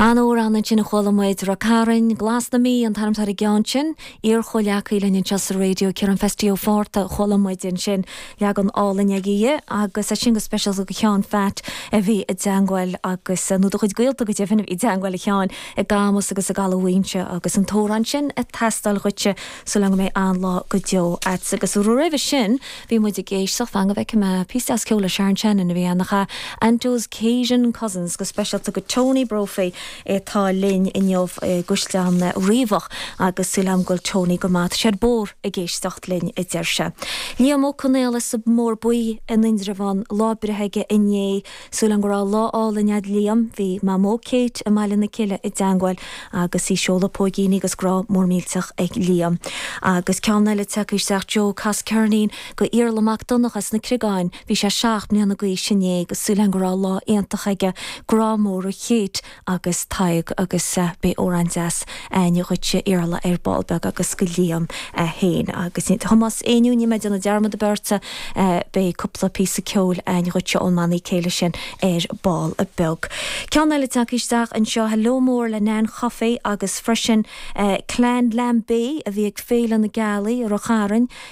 An t-amhrán ansin a chuala muid Ráth Chairn Glas na Mí, an t-ainm atá ar an gceann sin, iarchomhleacaí linn anseo sa raidió, Ciarán Feistí Ó Fátharta, chuala muid ansin leagan álainn aige agus é sin go speisialta go Sheán Pheait a bhí i dteangmháil agus, nó do chuid gaolta go deimhin a bhí i dteangmháil a Sheáin i gCamus agus i gCaladh Mhaínse agus an t-amhrán sin ag teastáil dhuitse. súil a'm go mbeidh an-lá go deo a'd. Agus roimhe sin bhí muid ag éisteacht fan go bhfeice mé píosa deas ceoil le Sharon Shannon a bhí ann a chaith And Those Cajun Cousins go speisialta go Tony Brophy é atá linn inniu i gCaisleán Riabhach agus súil a'm go bhfuil Tony go maith tá sé ar bord ag éisteacht linn a deir sé. Liam Ó Conaola sa mBóthar Buí in Indreabhán lá breithe aige inné. Súil a'm go raibh lá álainn a'd Liam, bhí Mamó Kate i mBaile na Cille i dteangmháil agus í ag seoladh póigíní agus grá mór millteach ag Liam. Agus ceann eile tagtha isteach Joe, cas ceirnín go Iarla Mac Donnacha as na Criogáin, bhí sé seacht mbliana d'aois inné agus súil a'm go raibh lá iontach aige, grá mór ó Kate, agus Tadhg agus beidh amhrán deas ainn dhuitse Iarla ar ball beag agus go Liam é féin agus Tomás Éinniú níl mé ag déanamh dearmad ar bith ort beidh cúpla píosa ceoil ainn dhuitse ón mbanna céilí sin ar ball beag. Ceann eile tagtha isteach anseo hello mór le Nan Chofaigh agus freisin Clann Lambe a bhí ag Féile na Gealaí i Ráth Chairn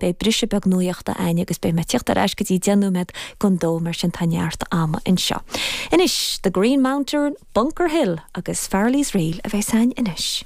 Beidh briseadh beag nuaíochta ainn agus beidh mé ag tíocht ar ais go dtí deich nóiméad gon dó mar sin tá neart ama anseo. Anois, The Green Mountain, Bunker Hill agus Farrelly's Reel a bheas ainn anois.